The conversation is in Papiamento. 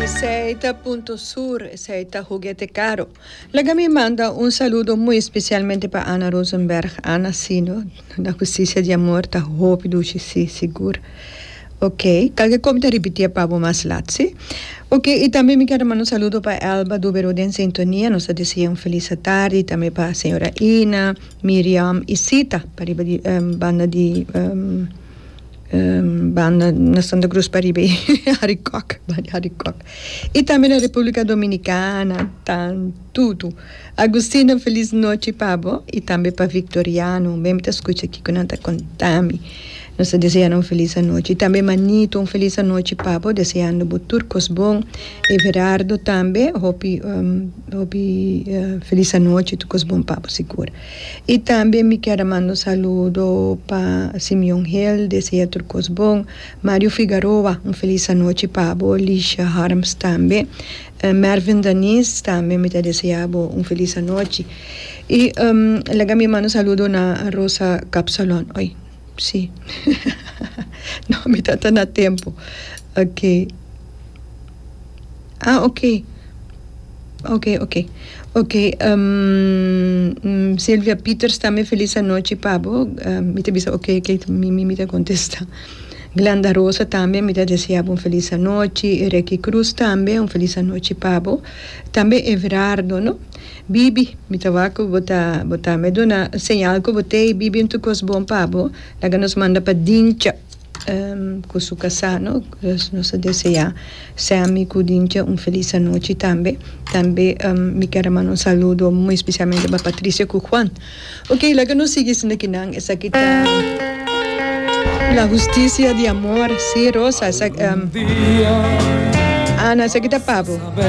Esei ta Punto Sur, esei ta Huguete Caro. Laga mi manda un saludo muy especialmente pa Ana Rosenberg, Ana Sino, na Justicia di Amor ta hopi dushi si, sigur. Ok, tal ke komi ta ripitia pa bo mas lat, si. Ok, y tambe mi ker manda un saludo pa Elba Dubero den sintonia, nos ta deseá un feliz atardi, y tambe pa señora Ina, Miriam y Sita, pariba di banda di. Banda na Santa Cruz pariba i Harry Kok banda Harry Kok i tambe na Republica Dominicana tan tutu Agustina feliz nochi pa bo i tambe pa Victoriano un ben mi ta scucha kico nan ta contami nos ta deseando un feliz anochi i tambe Manito un feliz anochi pa bo deseando bo tur cos bon Everardo tambe hopi hopi feliz anochi tur cos bon pa bo sigur. I tambe mi kier a manda un saludo pa Simeon Hill, desea tur kos bon, Mario Figaroa, un felis anochi pa bo, Lisha Harms tambe, Mervin Daniz tambe mi ta desea bo un felis anochi. I laga mi manda un saludo na Rosa Kapsalon. Sí. No, mi tata na tempu. Ok. Ah, ok. Ok, ok. Ok, um, Silvia Pieters tambe felis anochi pa bo. Um, mi ta bisa ok, ok, mi, mi, mi ta kontesta. Glanda Rosa tambe mi ta desea bo un felis anochi. Reki Cruz tambe un felis anochi pa bo. Tambe Everardo, no? Bibi, mi ta wak ku bo ta bo ta me duna un señal ku bo t'ei bibi un tukos bon pa bo. Laga nos manda pa Dincha ku su kasá, no? Nos ta deseá Sammy ku Dincha un felis anochi tambe. Tambe mi ker a manda un saludo muy especialmente pa Patricia ku Juan. Oke, laga nos sigui haciendo ki nan. Esaki ta La Justicia di Amor, sí Rosa, Ana, esaki ta pa bo.